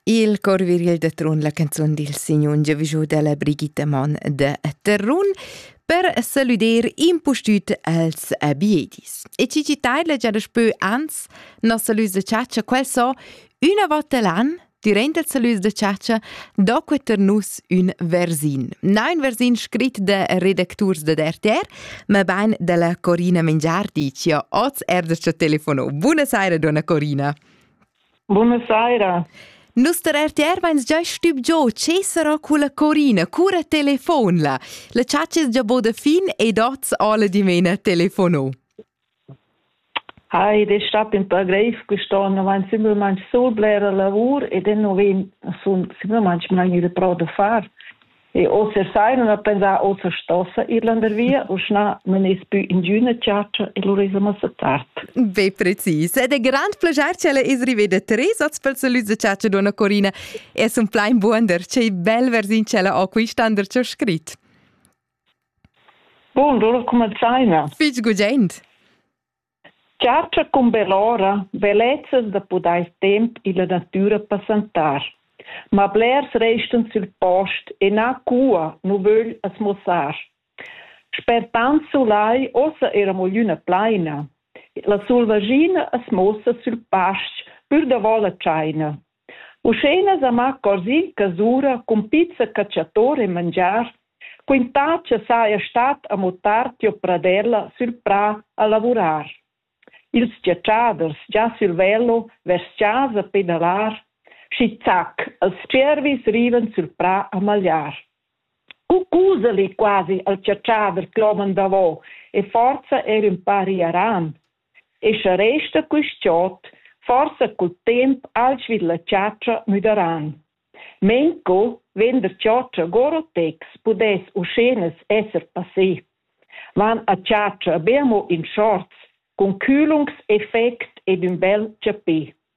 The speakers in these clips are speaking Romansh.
Il cor viril da Trun, la canzun dil signun giavischu dalla Brigitta Mann da Terrun per saluder impustüt els abiedis. E ci taila già da spö ans, nossa lus de ciaccia, quel so, una volta l'an, dirent el salus de ciaccia, do que ter nus ün versin. Na un versin scrit de redacturs de RTR, Mabain dalla Corina Mengiar dici oz er da telefono. Buonasera, donna Corina. Buonasera. Nus der RTR veins già stüb giò che sarà culla Corina, cura telefon la. La chatsches già bod fin ed oz alla dimena telefono. Ei ei stat ün pa greiv quest'on avanti simplamaing sul blera lavur ed ino vegn sun simplamaing main il pro da far. E oter sai non ho pensà oter stossa ir landervia, uschna nun es pü ingüna chatscha e lura esa massa tard. Be precis. Ed è grand plaschair ch'ella es riveda tres hoz pel salüd da chatscha donna Corina e sun plain buonder. Che bel versiun ch'ella ho quist'an der cho scrit. Bundur, cumanzaina. Fitg gudent. Chatscha cun bell'ora bellezas da pudair temp illa natüra passantar. Ma blers restan sül post e na cua nu vögl as muossar. Sper tant sulai uossa eira mo glüna plaina. La sulvaschina as muossa sül pasch pür davo la tschaina. Uschena sa ma Cosin casura cun pizza catschator e mangiar, quintà cha saja stat amo tard tiò pradella sül prà a lavurar. Ils giatschaders già sül velo vers chasa per inalar, schi zac, els tschiervis rivan sül prà a magliar. Cucuzeli quasi al chatschader cloman davo e forza er ün pa riaran. E sche resta quist giot forsa cul temp alch vid la chatscha müdaran. Menco vegn der chatscha Gorotex pudess uschenas esser passé. Van a chatscha be amo in shorts, cun culungs effect ed ün bel chapè.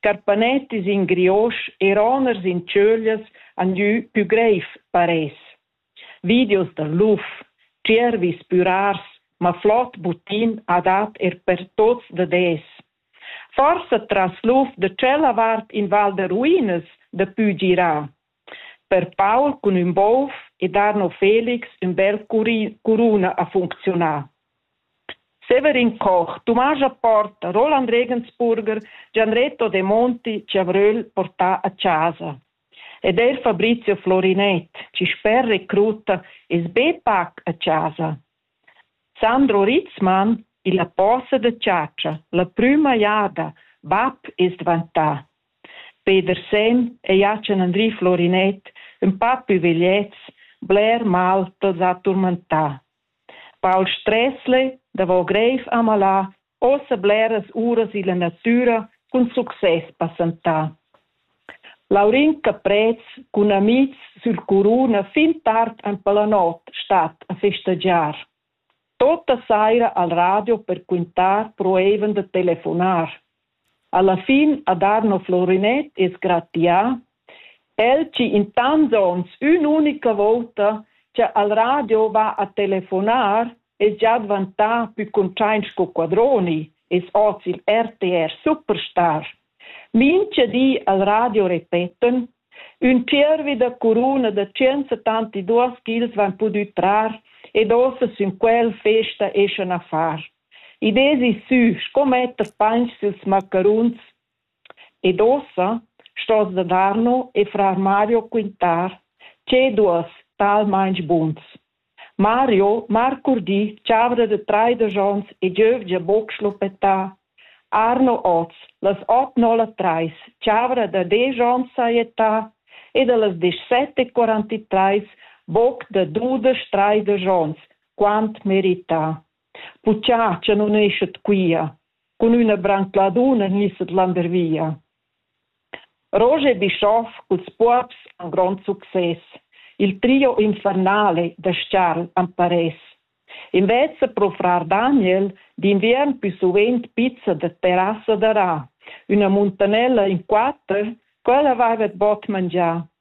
Carpanett e sin Griosch e roners in tschöglias han gnü pü greiv paress. Videos dal luf, tschiervis pürars, ma flot butin ha dat er per tots da des. Forsa tras luf da tschella vart in val da ruinas da pü girà, Per Paul cun ün bov ed Arno Felix ün bel curuna ha funcziunà. Severin Koch, Tumasch Apport, Roland Regensburger, Gianretto Demonti chi avröl portà a chasa. Ed eir Fabrizio Florinett chi sper recrutta es be pac a chasa. Sandro Ritzmann illa posa da chatscha la prüma jada bap es dvantà. Peder Senn e Jachen-Andri Florinett, ün pa pü vegliets, bler mal t'ls ha turmentà. Paul Stressle davo greiv amalà Ossa bleras uras illa natüra cun success passantà. Laurin Caprez cun amihs sül Curuna fin tard aint per la not stat a festagiar. Tota saira al radio per quintar proevan da telefonar. Alla fin ad Arno Florinet es gratià el chi in tants ons ün'unica vouta cha al radio va a telefonar es già dvantà pü cuntschaint sco Quadroni, es hoz il RTR Superstar. Mincha di al radio repetan, ün tschiervi da curuna da 172 ch'ils vain pudü trar ed ossa sün quel festa eschan a far. Id esi sü sco metter painch süls maccaruns Ed ussa stos da Darno e frar Mario quintar tgei duos talmeins buns. Mario marcurdi chavra da traidesch onns e giövgia buc schluppetà. Arno oz, las ot nolla trais, chavra da desch onns sajetà ed a las dezsett e quarantatreis buc da dudesch traidesch onns, quant merità. Bucciatscha nun eschet quia, cun üna brancladuna gnisset landervia. Roger e Bischoff culs buobs han grond success. Il trio infernale da Scarl am paress. Invezza pro frar Daniel d'inviern pü suvent pizza da terrassa da Ra, üna muntanella in quatter, quella avaivet bod mangià.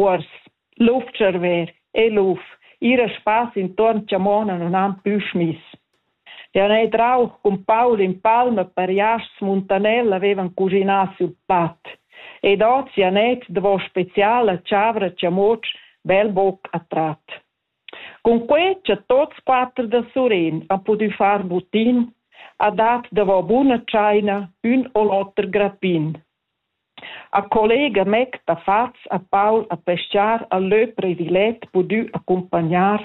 Uors, luf tscharver e luf, ir a spass intuorn chamona non han plü schmiss. Jau n'hai drauch cun Paul in palma per jasts Muntanella avevan cuginà sül pat. Ed ozi ha net davo speciala chavra chamuotsch bel boc a trat. Cun quai cha tots quatter da Surin han pudü far butin, ha dat davo buna tschaina ün o l'oter grappin. Ha collega Mec da Faz ha Paul a peschar ha leu previlet pudü accumpagnar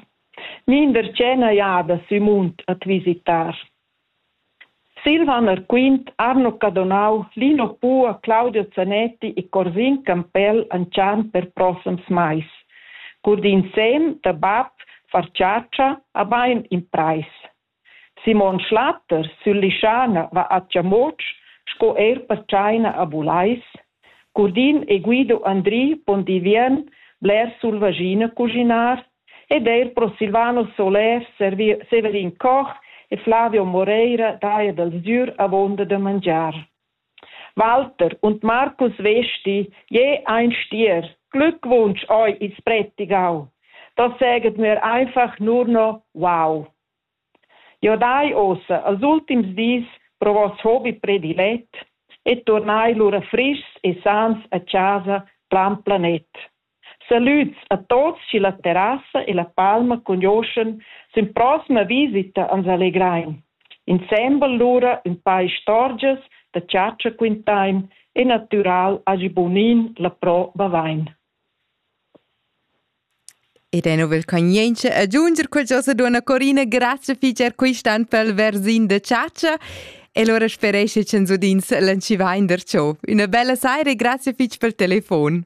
mindertgena jada sü Munt at visitar. Silvan Arquint, Arno Cadonau, Lino Pua, Claudio Zanetti e Corsin Campell anchan per prossams mais. Cur d'insem da bab far chatscha ha bein in preis. Simon Schlatter sül Lischana va a Tschamotsch sco eir per tschaina a Bulais. Curdin e Guido Andri pon divien bler sul vaschina cuginar ed eir Prosilvano Solèr, Severin Koch e Flavio Moreira daja dal sgür avonda da mangiar. Walter und Marcus Vesti, jeu ein stier, glückwunsch ei il spretigau. Da seget mir einfach nur noch wow. Jo dai ossa als ultims dis pro vos hobby predilet e turnai lura friscs e sans a casa plan planet. Salüds a tuots chi la terrassa e la palma cugnuoschan sün proxima visita ans allegrain. Insembel lura ün pa istorgias da chatscha quintain e natüral hagi bunin la Pro Bavain. Ed è novel cognientscha agiunger qualchosa duonna Corina grazcha fich eir quist'an pel versin da chatscha e lura sperescha ch'ns udins lanchivain darcho. Üna bella saira e grazcha fich pel telefon.